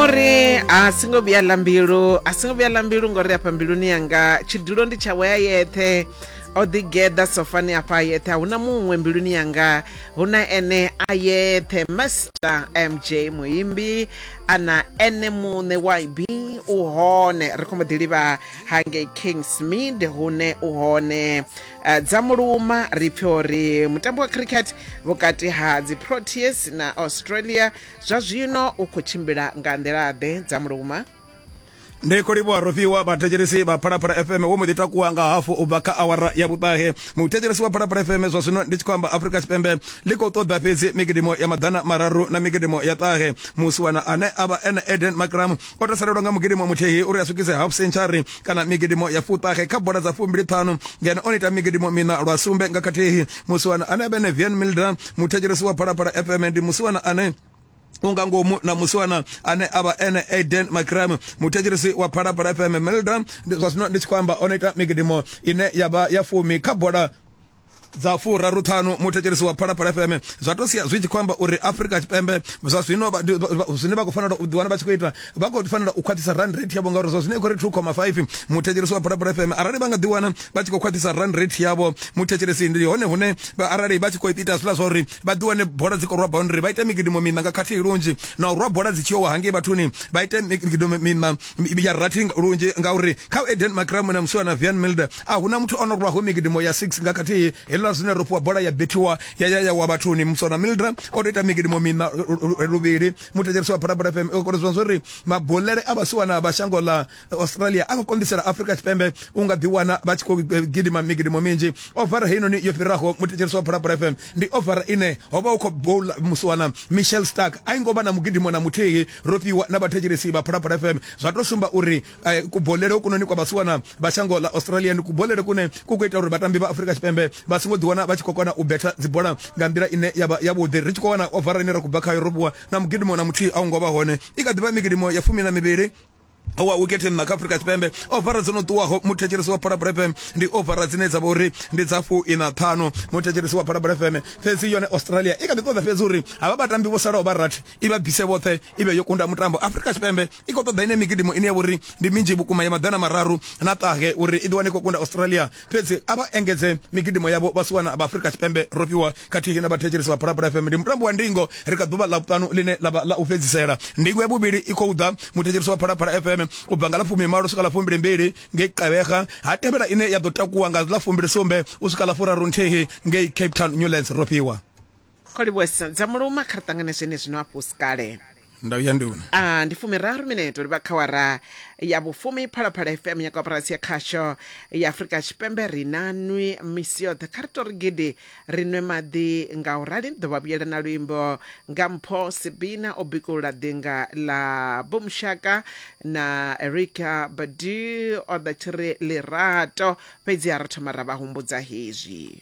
uri a singo vhuya ḽa mbilu a singo vhuya ḽa mbilu ngori afha mbiluni yanga tshidulo ndi tshawe ya yeṱhe o ḓigeḓa sofani afha yeṱhe a huna muṅwe mbiluni yanga huna ene a yeṱhe master mj muimbi ana ene muṋe yb u hone ri khombo ḓi livha hangei kingsmid hune u hone uh, dza muluma ri pfhi uri mutambo wa cricket vhukati ha dzi proteas na australia zwa zwino u khou tshimbila nga nḓila-ḓe dza muluma ndi khou livhuwa rofhiwa vhathetshelesi vha phalaphala fm wo mbo ḓi takuwa nga hafu u bva kha awara ya vhuṱahe muthetshelesi wa phalaphala fm zwa zwino ndi tshi khou amba afrika tshipembe ḽi khou ṱoḓa fhedzi migidimo ya maḓana mararu na migidimo ya ṱahe musiwana ane a vha ene eden macram o tou salelwa nga mugidimo muthihi uri a swikise half century kana migidimo ya fuṱahe kha bola dza fumbili ṱhanu ngeno o ita migidimo mina lwa sumbe nga khathihi musiwana ane a vhe ne vian milda muthetshelesi wa phalaphala fm ndi musiwana ane unga ngomu na musiwana ane avha ene aden macram muthetshelesi wa phalaphala fm melda zwa zwino ndi tshi khou amba o no ita migidimo ine ya vha ya fumi kha bola dza furaru ṱhanu muthetshelesi wa phalaphala fm zwa to sia zwi tshi khou amba uri afrika tshipembe zwa zwino zwine vha khou fanela u ḓiwana vha tshi khou ita vha khou fanela u khwaṱhisa rand rate yavho ngauri zwa zwino i khou ri 2,5 muthetshelesi wa phalaphala fm arali vha nga ḓiwana vha tshi khou khwaṱhisa rand rate yavho muthetshelesi ndi hone hune arali vha tshi khou ita zwiḽa zwa uri vha ḓiwane bola dzi khou rwa boundary vha ite migidimo miṋa nga khathihi lunzhi na u rwa bola dzi tshi yowa hangei vhathuni vha ite migidimo miṋa ya rathi lunzhi ngauri kha u eden macram na musiwana vian milder A hu na muthu o no lwaho migidimo ya 6 nga khathihi. Heliḽa zwine ro fhiwa bola ya bethiwa ya ya ya wa vhathuni. Muswa na Mildra o tou ita migidimo mina luvhili. Muthetshelesi wa Phalaphala FM o koledzwa zwo ri mabulele a vhasiwana vha shango ḽa Australia a khou konḓisela Afrika Tshipembe u nga ḓiwana vha tshi khou gidima migidimo minzhi. Ovara heinoni yo fhiraho muthetshelesi wa Phalaphala FM ndi ovara ine ho vha hu khou boula musiwana Michelle Stark. A i ngo vha na mugidimo na muthihi. Ro fhiwa na vhathetshelesi vha Phalaphala FM zwa tou sumba uri eh, kubolele hokunoni kwa vhasiwana vha shango ḽa australia ndi kubolele kune ku khou ita uri vhatambi vha afurika tshipembe vha songo ḓiwana vha tshi khou kona u betha dzibola nga nḓila ine ya vha yavhuḓi ri tshi khou wana ovara ine ra khou bva khayo ro vhuwa na mugidimo na muthihi a u ngo vha hone i kha ḓi vha migidimo ya fumi na mivhili wa wikete nna kha afurika tshipembe ovara dzo no ṱuwaho muthetshelesi wa phalabula fm ndi ovara dzine dza vha uri ndi dza fu ina ṱhanu muthetshelesi wa phalabula fm fhedzi yone australia i kha ḓi ṱoḓa fhedzi uri havha vhatambi vho salaho vha rathi i vha bise vhoṱhe i vhe yo kunda mutambo afurika tshipembe i khou ṱoḓa ine migidimo ine ya vha uri ndi minzhi vhukuma ya maḓana mararu na ṱahe uri i ḓiwane khou kunda australia fhedzi a vha engedze migidimo yavho vha siwana vha afrika tshipembe ro fhiwa khathihi na vhathetshelesi vha phalaphala fm ndi mutambo wa ndingo ri kha ḓuvha ḽa vhuṱanu ḽine ḽa vha ḽa u fhedzisela ndingo ya vhuvhili i khou ḓa muthetshelesi wa phalaphala fm u bva nga ḽa fumi malo swika ḽa fumbili mbili ngei qevega ha tevhela ine ya ḓo takuwa nga ḽa fumbili sumbe u swika ḽa furaru nthihi ngei cape town newlands ro fhiwa Kho livhuwesa dza muluma kha ri ṱangane zwenezwino a fhusi kale. Ndau ya nduna. A ndi fumiraru mineto ri vha kha wara ya vhufumi Phalaphala FM ya koporasi ya khasho ya Afrika Tshipembe ri na nwi misi yoṱhe kha ri to ri gidi ri nwe maḓi nga u rali ḓo vha vhuyela na luimbo nga mpho Sibina o bikulula ḓinga ḽa Bumushaka na Erika Badi o ḓa tshiri lirato fhedzi ha ra thoma ra vha humbudza hezwi.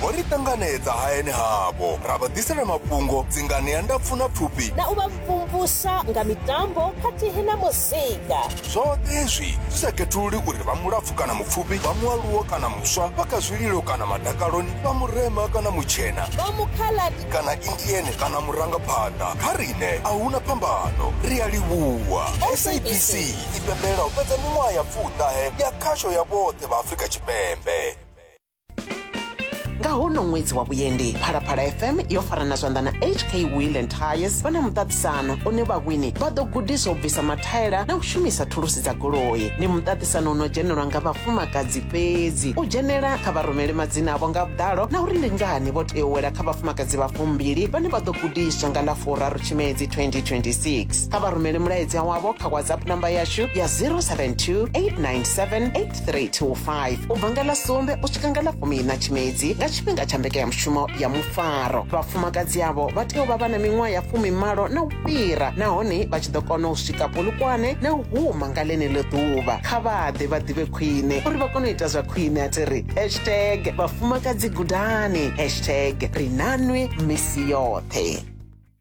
vho ri ṱanganedza hayani havho ra vha ḓisela mafhungo dzingani ya ndapfu na pfufhi na u vha mvumvusa nga mitambo khathihi na muzika zwoṱhe hezwi zwi sa khethululi uri vha mulapfu kana mupfufhi vha mualuwo kana muswa vha kha zwililo kana madakaloni vha murema kana mutshena vha mukhaladi kana indiene kana murangaphanḓa kha riṋe a huna phambano ri a livhuwa sabc i pembela u fhedza miṅwaha ya pfuṱahe ya khasho ya vhoṱhe vha afrika tshipembe nga hono ṅwedzi wa vhuendi phalaphala fm yo farana zwanḓa na hk wheel and tires vha na muṱaṱisano une vhawini vha ḓo gudiswa u bvisa mathaela na u shumisa thulusi dza goloi ndi muṱaṱisano uno dzhenelwa nga vhafumakadzi fhedzi u dzhenela kha vharumele madzina avho nga vhuḓalo na uri ndi ngani vho tea u wela kha vhafumakadzi vha fumbili vhane vha ḓo gudiswa nga ḽa furaru tshimedzi 2026 kha vharumele mulaedza wavho kha whatsapp namba yashu ya 072 897 3 to 5 u bva nga ḽa sumbe u swika nga ḽa fumiiṋa tshimedzi nga tshifhinga tsha mbekanyamushumo ya mufaro vhafumakadzi avho vha tea u vha vha na miṅwaha ya fumimalo na u fhira nahone vha tshi ḓo kona u swika polukwane na u huma nga ḽeneḽo ḓuvha kha vha ḓe vha ḓivhe khwine uri vha kone u ita zwa khwine a thi ri hashtag vhafumakadzi gudani hashtag ri nanwi misi yoṱhe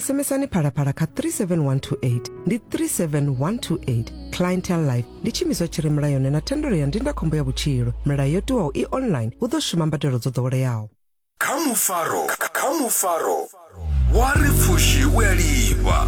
SMSani phalaphala kha 37128 ndi 37128 clientele life ndi tshiimiswa tshi re mulayoni na thendelo ya ndindakhombo ya vhutshilo milayo yo tiwaho i online hu ḓo shuma mbadelo dzo ḓoweleaho kha mufaro kha mufaro wa ri pfushi u a lifha